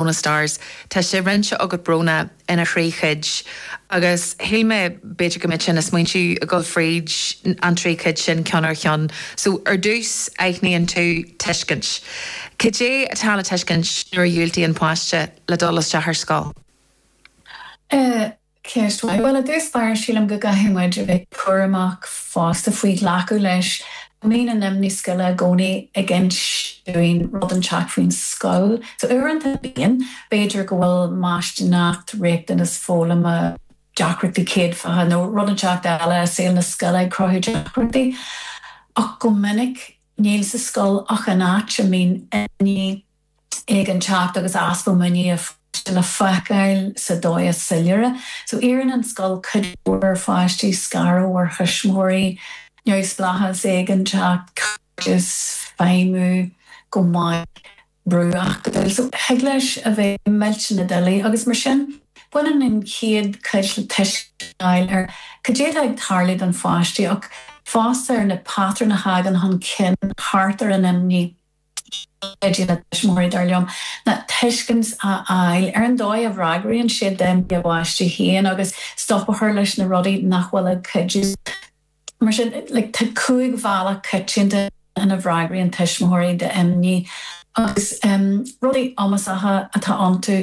Bróna stars. Tá sé roinnte agat Bróna ina thrí chuid agus shíl mé b'fhéidir go mba mhaith an smaoineamh é dul fríd an trí chuid sin ceann ar cheann. So ar dtús aithníonn tú tuiscint. Cad é atá le tuiscint nuair a dhiúltaíonn páiste le dul isteach ar scoil? Eh. Ceist mhaith. Bhuel, i dtús báire sílim go gcaithfidh muid a bheith cúramach fosta faoi ghlacadh leis go mbíonn an imní scoile i gcónaí ag insint dúinn rud inteacht faoin scoil. So uaireanta bíonn, b'fhéidir go bhfuil maistíneacht, riachtanas foghlama, deacrachtaí céadfacha nó rud inteacht eile i saol na scoile ag cruthú deacrachtaí ach go minic níl sa scoil ach an áit a mbíonn imní. éiginnteacht agus easpa muiníne an pháiste le feiceáil sa dóigh is soiléire. So iarrann an scoil cuid mhór ar pháistí, scaradh ó thuismitheoirí, neamhspleáchas, éiginnteacht, cairdeas, feidhmiú go maith, brú acadúil. So thig leis a bheith millteanach doiligh agus mar sin baineann an chéad chuid le tuiscint a fháil ar cad é atá ag tarlú don pháiste ach fosta ar na patrúin a thagann chun cinn thart ar an imní. D'fhéadfaidís, na tuismitheoirí, dar liom, tuiscint a fháil ar an dóigh a bhfreagraíonn siad d'imní a bpáistí féin agus stop a chur leis na rudaí nach bhfuil ag cuidiú. Mar sin, tá cúig bhealach coitianta ina bhfreagraíonn tuismitheoirí d'imní agus rudaí iomasacha atá iontu,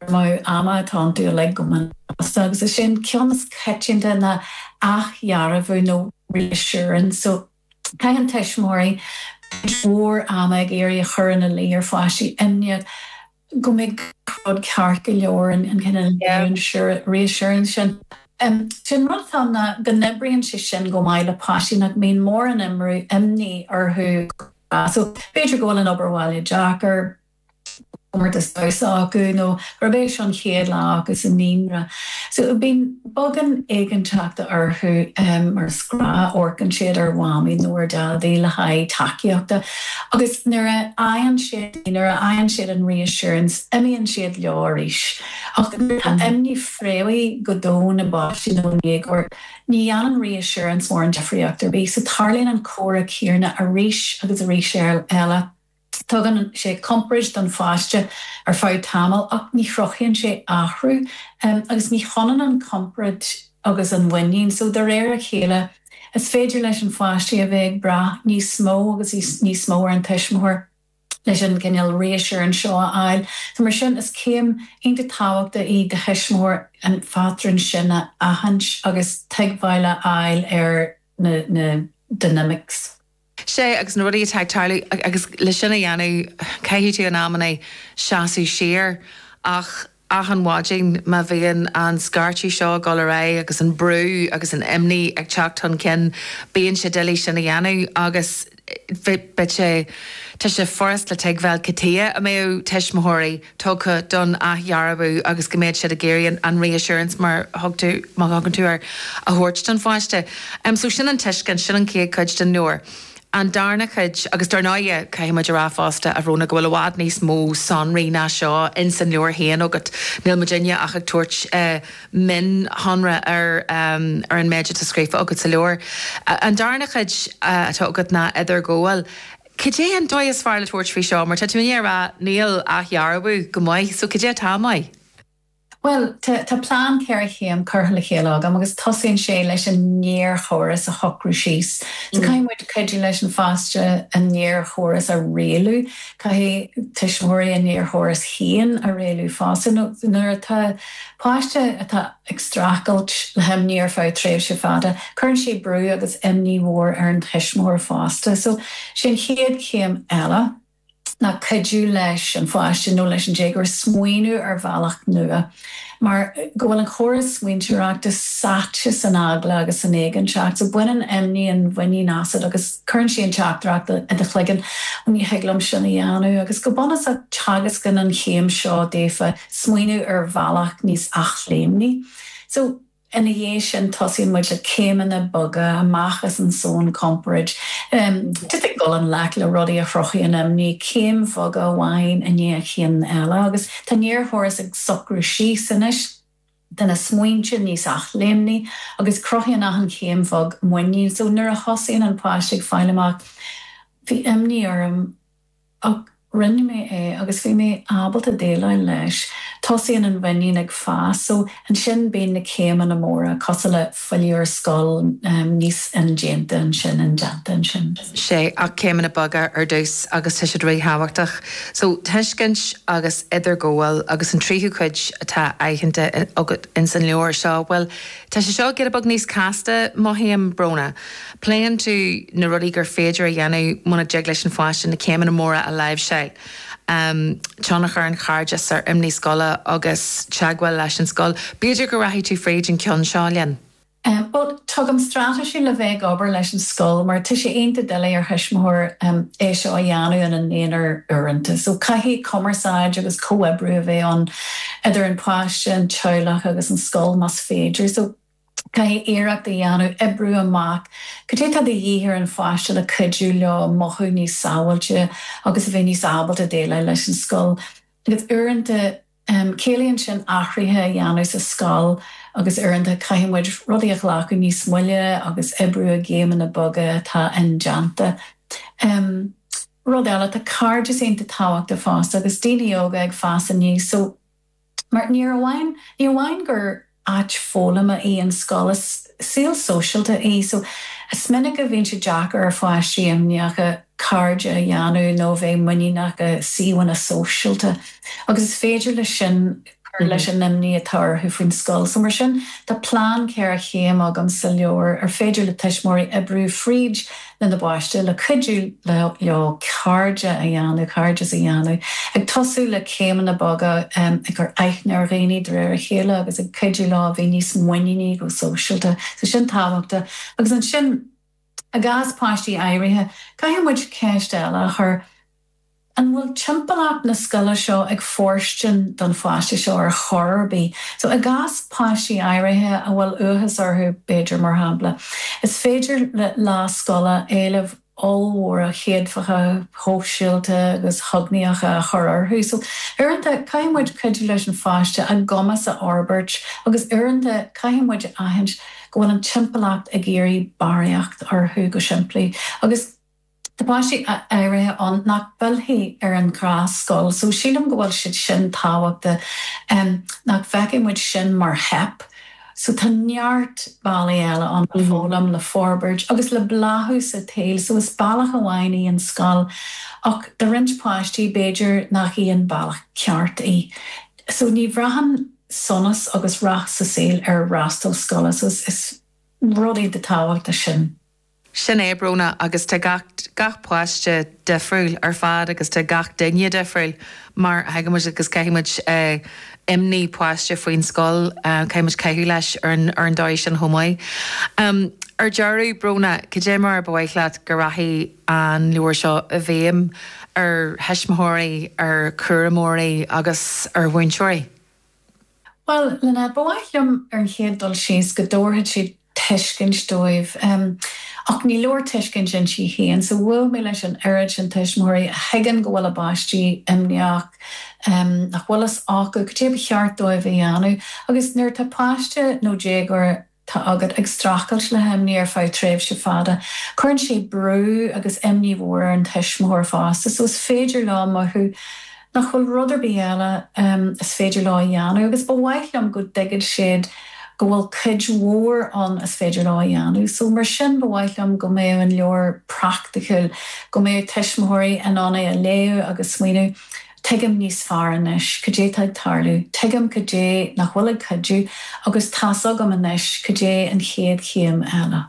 cur amú ama atá iontu uilig go minic fosta agus is é an ceann is coitianta ná athdhearbhú nó reassurance. Caitheann tuismitheoirí cuid mhór ama ag iarraidh a chur ina luí ar pháistí imníocha go mbeidh gach rud ceart go leor, an cineál reassurance sin. Sé an rud atá ann ná go n-oibríonn sé sin go maith le páistí nach mbíonn mórán imní orthu gach lá so b'fhéidir go bhfuil an obair bhaile deacair, comórtas damhsa acu nó gurb é seo an chéad lá acu sa naíonra. So bíonn beagán éiginnteachta orthu mar is gnách, amharcann siad ar Mhamaí nó ar Dhaidí le haghaidh tacaíochta agus nuair a fhaigheann siad í, nuair a fhaigheann siad an reassurance, imíonn siad leo arís. Ach nuair atá imní fréamhaithe go domhain i bpáistí nó i ndéagóirí, ní dhéanann reassurance mórán difríocht ar bith. So tarlaíonn an comhrá céanna arís agus arís eile. Tugann sé compord don pháiste ar feadh tamaill ach ní chruthaíonn sé athrú agus ní hionann an compord agus an mhuinín so, de réir a chéile, is féidir leis an pháiste a bheith ag brath níos mó agus níos mó ar an tuismitheoir leis an gcineál reassurance seo a fháil so, mar sin, is céim iontach tábhachtach í do thuismitheoir an patrún sin a aithint agus tuigbheáil a fháil ar na dynamics. sé agus na rudaí atá ag tarlú agus le sin a dhéanamh caithfidh tú in amanna seasamh siar ach achan mhaidin, má bhíonn an scairteadh seo ag dul ar aghaidh agus an brú agus an imní ag teacht chun cinn bíonn sé doiligh sin a dhéanamh agus beidh sé tá sé furast le tuigbheáil cad tuighe a mbeadh tuismitheoirí tugtha don athdhearbhú agus go mbeadh siad ag iarraidh an reassurance, mar a thugann tú air, a thabhairt don pháiste. So sin an tuiscint, sin an chéad chuid den leabhar. An darna chuid, agus dár ndóighe, caithfidh muid a rá fosta, a Bhróna, go bhfuil i bhfad níos mó sonraí ná seo ins an leabhar féin agat, níl muidinne ach ag tabhairt mionsonra ar an méid atá scríofa agat sa leabhar. An darna chuid atá agat ná idirghabháil. Cad é an dóigh is fearr le tabhairt faoi seo? Mar tá tú i ndiaidh a rá, níl athdhearbhú go maith, so cad é atá maith? Bhuel, tá plean ceithre chéim curtha le chéile agam agus tosaíonn sé leis an néarchóras a shocrú síos. So caithfidh muid cuidiú leis an pháiste an néarchóras a rialú. Caithfidh tuismitheoirí a néarchóras féin a rialú fosta nuair atá páiste atá. ag streachailt le himní ar feadh tréimhse fada, cuireann sé brú agus imní mhór ar an tuismitheoir fosta. So, sé an chéad chéim eile ná cuidiú leis an pháiste nó leis an déagóir smaoineamh ar bhealach nua mar go bhfuil an córas smaointeoireachta sáite san eagla agus san éiginnteacht. So, baineann imní an mhuinín asat agus cuireann sé an teachtaireacht i do chloigeann, 'Ní thig liom sin a dhéanamh'. Agus go bunúsach, teagascann an chéim seo daofa, smaoineamh ar bhealach níos athléimní. So, ina dhiaidh sin, tosaíonn muid le céimeanna beaga, amach as an zón compoird, um, le dul i ngleic le rudaí a chruthaíonn imní, céim bheag amháin i ndiaidh an chinn eile, agus tá an néarchóras ag socrú síos anois, tá na smaointe níos athléimní agus cruthaíonn achan chéim bheag muinín. So, nuair a thosaíonn an páiste ag fáil amach Bhí imní orm, Ach rinne mé é agus bhí mé ábalta déileáil leis. Tosaíonn an mhuinín ag fás. So, ansin bíonn na céimeanna móra, cosúil le filleadh ar scoil, níos indéanta ansin, indéanta ansin. Sea, ach céimeanna beaga ar dtús agus tá siad ríthábhachtach. So, tuiscint agus idirghabháil agus an tríú cuid atá aitheanta agat ins an leabhar seo, bhuel, Tá sé seo ag éirí giota beag níos casta, mothaím, a Bhróna. Pléann tú na rudaí gur féidir a dhéanamh muna dtig leis an pháiste na céimeanna móra a láimhseáil, tionchar an chairdis ar imní scoile agus teagmháil leis an scoil. B'fhéidir go rachaidh tú fríd an ceann seo linn. Bhuel, tugaim straitéisí le bheith ag obair leis an scoil mar tá sé iontach doiligh ar thuismitheoir é seo a dhéanamh ina n-aonar uaireanta. So caithfidh cumarsáid agus comhoibriú a bheith ann. idir an páiste, an teaghlach agus an scoil más féidir. So, caithfidh muid iarracht a dhéanamh oibriú amach cad é atá de dhíth ar an pháiste le cuidiú leo mothú níos sábháilte agus a bheith níos ábalta déileáil leis an scoil. Agus uaireanta ciallaíonn sin athruithe a dhéanamh sa scoil agus uaireanta caithfidh muid rudaí a ghlacadh níos moille agus oibriú i gcéimeanna beaga atá indéanta. Rud eile, tá cairdeas iontach tábhachtach fosta, agus daoine óga ag fás aníos so mar ní amháin ní amháin gur áit foghlama í an scoil, is saol sóisialta é so is minic a bhíonn sé deacair ar pháistí imníocha cairde a dhéanamh nó a bheith muiníneach i suíomhanna sóisialta agus is féidir leis sin cur leis an imní atá orthu faoin scoil. So mar sin, tá plean ceithre chéim agam sa leabhar ar féidir le tuismitheoirí oibriú fríd lena bpáiste le cuidiú leo cairde a dhéanamh, cairdeas a dhéanamh, ag tosú le céimeanna beaga, ag cur aithne ar dhaoine de réir a chéile agus ag cuidiú leo a bheith níos muiníní go sóisialta. So sin tábhachtach. Agus ansin, i gcás páistí áirithe, caithfidh muid ceist eile a chur, An bhfuil timpeallacht na scoile seo ag fóirstean don pháiste seo ar chor ar bith? So, i gcás páistí áirithe a bhfuil uathachas orthu, b'fhéidir, mar shampla, is féidir le lá scoile éilimh ollmhóra chéadfacha, shóisialta agus chognaíocha a chur orthu. So, uaireanta, caithfidh muid cuidiú leis an pháiste a gcumas a fhorbairt agus uaireanta caithfidh muid a aithint go bhfuil an timpeallacht ag iarraidh barraíocht orthu, go simplí. Agus. Tá páistí áirithe ann nach bhfillfidh ar an ghnáthscoil so sílim go bhfuil sé iontach tábhachtach nach bhfeicfidh muid sin mar theip so tá neart bealaí eile ann le foghlaim, le forbairt agus le bláthú sa tsaoil so is bealach amháin í an scoil ach do roinnt páistí b'fhéidir nach í an bealach ceart í so ní bhraitheann sonas agus rath sa saol ar fhreastal scoile so is rud iontach tábhachtach sin. Sin é Bróna agus tá gach, gach páiste difriúil ar fad agus tá gach duine difriúil mar a thuigeann muid agus caithfimid eh imní páiste faoin scoil eh caithfimid caitheamh leis ar an, ar an dóigh sin chomh maith. Em ar deireadh Bróna, cad é mar ba mhaith leat go rachadh an leabhar seo i bhfeidhm ar thuismitheoirí, ar chúramóirí agus ar mhúinteoirí? Bhuel, Lena, ba mhaith liom ar an chéad dul síos go dtabharfadh sé tuiscint dóibh, ach ní leor tuiscint inti féin, so bhuail mé leis an oiread sin tuismitheoirí a thuigeann go bhfuil a bpáistí imníoch, nach bhfuil fhios acu cad é ba cheart dóibh a dhéanamh, agus nuair atá páiste nó déagóir. tá agat ag streachailt le himní ar feadh tréimhse fada. Cuireann sé brú agus imní mhór ar an tuismitheoir fosta so is féidir leo mothú nach bhfuil rud ar bith eile is féidir leo a dhéanamh agus ba mhaith liom go dtuigfidh siad go bhfuil cuid mhór ann is féidir leo a dhéanamh so mar sin ba mhaith liom go mbeadh an leabhar praiticiúil, go mbeadh tuismitheoirí in ann é a léamh agus smaoineamh. Tuigim níos fearr anois cad é tá ag tarlú. Tuigim cad é nach bhfuil ag cuidiú agus tá's agam anois cad é an chéad chéim eile.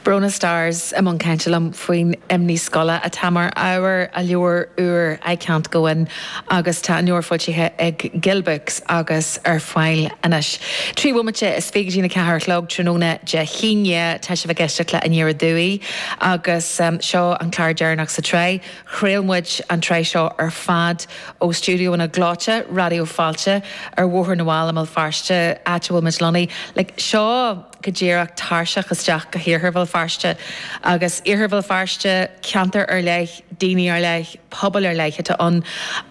Bronagh Starrs i mbun cainte liom faoin imní scoile atá mar ábhar a leabhair úir I Can't Go In agus tá an leabhar foilsithe ag Gill Books agus ar fáil anois. Trí bhomaite is fiche dtí a ceathair a chlog tráthnóna Dé hAoine tá sibh ag éisteacht le Aniar Aduaidh agus seo an clár deireanach sa tsraith. Chraol muid an tsraith seo ar fad ó stiúideo gleoite, Raidió Fáilte, ar Bhóthar na bhFál i mBéal Feirste, áit a bhfuil muid lonnaí. Like, seo go díreach tairseach isteach go hIarthar Bhéal Feirste. Agus Iarthar Bhéal Feirste, ceantar ar leith, daoine ar leith, pobail ar leith atá ann.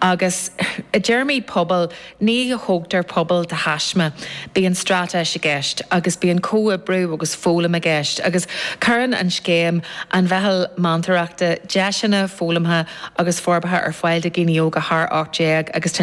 Agus i dtéarmaí pobail, Ní thógtar pobal de thaisme. Bíonn straitéis i gceist agus bíonn comhoibriú agus foghlaim i gceist agus cuireann an scéim, an Mheitheal Meantóireachta, deiseanna foghlamtha agus forbartha ar fáil do dhaoine óga thar 18 agus